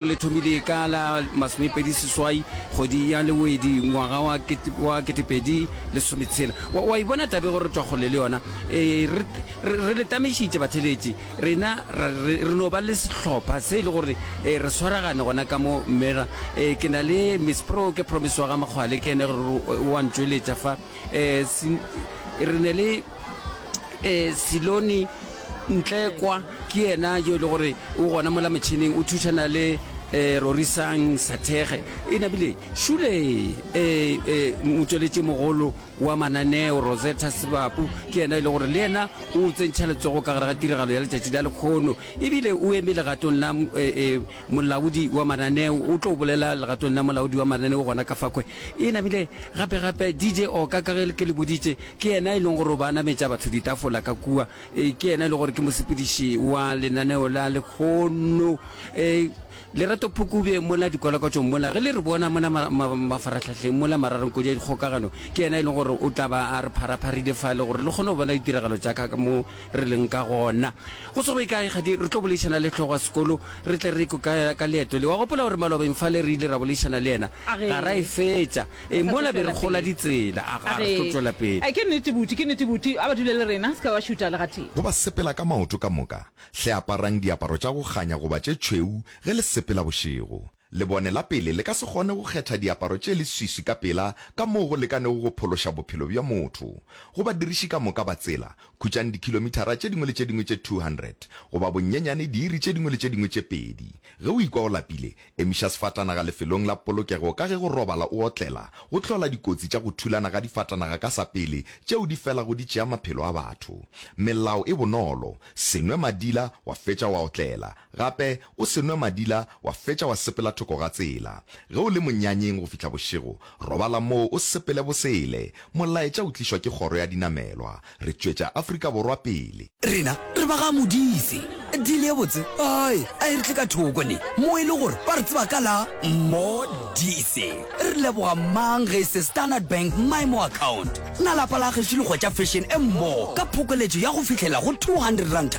le thomile ka la masomepedi seswai kgwedi ya lewedi ngwaga wa wa ketepedi lesometshela wa, wa ibona tabe gore twa kgole le yona e, re, re, re le tamešitše batheletši rena ra, re, re no ba le sehlopha se e le gore e, re swaragane gona ka mo mera e, ke na le miss pro ke promise wa ga makgwale ke ene gore o a ntšweletša fa e, sin, re ne le e Silone Ntlekwa ke yena yo e le gore o gona mola motšhineng o thušana le e Rorisang Sathege e nabile šule e e motsweletši mogolo wa mananeo Rosetta Sebapu ke yena e le gore le yena o tsentšha letsogo ka gare ga tiragalo ya letšatši la lekgono ebile o eme legatong la e, e, molaodi wa mananeo o tlo bolela legatong la molaodi wa mananeo gona ka fakwe e nabile gape gape DJ Oka ka ge ke le boditše Ke yena e leng gore o ba nametša batho ditafola ka kua. Ee, ke yena e lego gore ke mosepediši wa lenaneo la lekgono. Ee, Lerato Phukubje mola dikwalakwatšong mola, ge le re bona mona ma, ma, mafarahlahleng mola mararong kodi ya dikgokagano, ke yena e leng gore o tla ba a re pharapharile fale gore le kgone go bona ditiragalo tša ka mo re leng ka gona. Go se go ye kae, kgadi, re tlo boledišana le hlogo ya sekolo, re tle re ekwe ka, ka leeto le. Wa gopola gore malobeng fale re ile ra boledišana le yena, ga ra e fetša. Ee, mola be re kgola ditsela. A ga re tlo tšwela pele. Ke nnete, Buti, ke nnete, Buti. A ba dule le rena. Se ka wa šuta le gatee. Go ba sepela ka maoto ka moka, hle aparang diaparo tša go kganya goba tše tšhweu ge le sepela bošego. Lebone la pele le ka se kgone go kgetha diaparo tše leswiswi ka pela ka moo go lekanego go phološa bophelo bja motho. Go badiriši ka moka ba tsela, khutšang dikhilomithara tše dingwe le tše dingwe tše 200, goba bonyenyane diiri tše dingwe le tše dingwe tše pedi. Ge o ikwa o lapile, Emiša sefatanaga lefelong la polokego ka ge go robala o otlela go hlola dikotsi tša go thulana ga difatanaga ka sa pele tšeo di felago di tšea maphelo a batho. Melao e bonolo, Se nwe madila wa fetša wa otlela. Gape, o se nwe madila wa fetša wa sepela thoko ga tsela. Ge o le monyanyeng go fihla bošego, robala moo o sepele bosele. Molaetša o tlišwa ke kgoro ya dinamelwa. Re tšwetša Afrika Borwa pele. Rena re ba ga Modise. Deal ye botse ai a e re tle ka thoko ne mo e le gore ba re tseba ka la Modise. Re leboga mang ge e se Standard Bank My More Account. Na lapa la Gešo le hwetša fashion e mmogo ka phokoletšo ya go fihlela go 200 ranta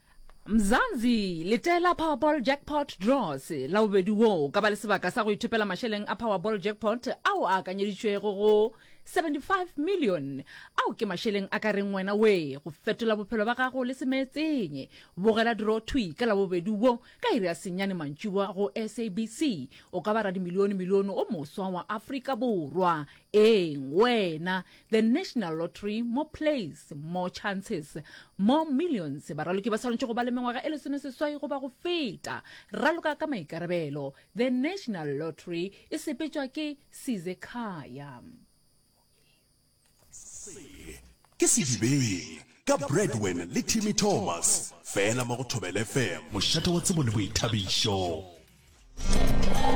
Mzansi, Letela Powerball Jackpot Draws la bobedi wo o ka ba le sebaka sa go ithopela mašeleng a Powerball Jackpot ao a akanyeditšwego go 75 million. Ao ke mašeleng a ka reng wena wee go fetola bophelo ba gago le semeetseng. Bogela draw thwi ka Labobedi wo ka iri ya senyane mantšiboa go SABC. O ka ba radimilione-milione o moswa wa Afrika Borwa. Eng wena, the National Lottery, more plays, more chances, more millions. Baraloki ba swanetše go ba le mengwaga e lesome seswai goba go feta. Raloka ka maikarabelo. The National Lottery e sepetšwa ke Size Khaya. Se ke Sedibeng ka Bradwin le Timmy Thomas, fela mo go Thobela FM. Mošate wa tsebo le boithabišo.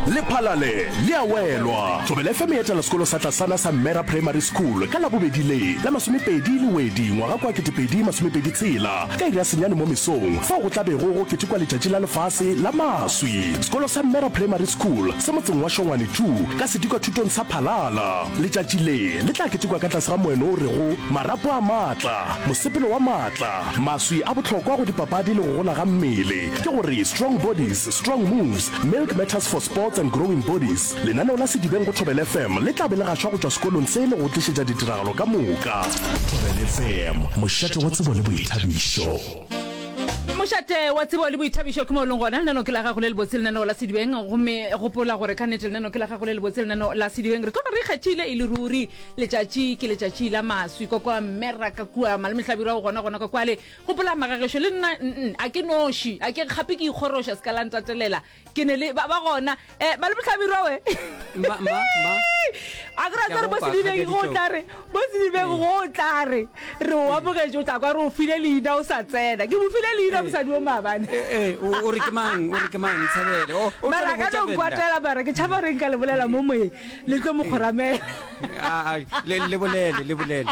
lephalale le a welwa thobela fm e etela sekolo sa tlasana sa mmera primary school ka labobedi le la masomepedi le wedi ngwaga kwa ketepedi masomepedi tshela ka iri ya senyane mo mesong fao go tla bego go ketekwa letšatši la lefase la maswi sekolo sa mmera primary school se motseng wa šongwane tu ka sedikwa thutong sa phalala letšatši le le tla ketekwa ka tlase ga moeno o rego marapo a maatla mosepelo wa maatla maswi a bohlokwa go dipapadi le go gola ga mmele ke gore strong bodies Strong Moves, Milk Matters for Sports and Growing Bodies, lenaneo la Sedibeng go Thobel FM le tla be le gašwa go tšwa sekolong se le go tlišetša ditiragalo ka moka. Thobel FM, mošate wa tsebo le boithabišo. Mošate wa tsebo le boithabišo ke mo e leng gona lenaneo ke la gago le lebotse lenaneo la sedibeng gomme gopola gore ka nete lenaneo ke la gago le lebotse lenaneo la sedibeng re tloga re ikgethile e le ruri letšatši ke letšatši la maswi kwa kwa mmeraka kua malemehlabirwa o gona gona kwa kwale Gopola, Magagešo, le nna, nn, a ke noši, a ke gape ke ikgoroša, se ka la ntatelela. Ke ne le, ba, ba gona. Eh, ba le bohlabirwa we? Mma, mma, mma. A ke ra tswa re bo sedibeng go o tla re, bo sedibeng go o tla re, re o amogetše, o tla kwa re o file leina o sa tsena. Ke mo file leina mosadi o maabane. Eh, eh, o, o re ke mang, o re ke mang, Nthabele? O, o tlo Mara a ka botša no Venda. nkwatela, mara ke tšhaba gore nka le bolela mo moyeng, le tlo mo kgoramela. Ah, ah, le, le bolele, le bolele.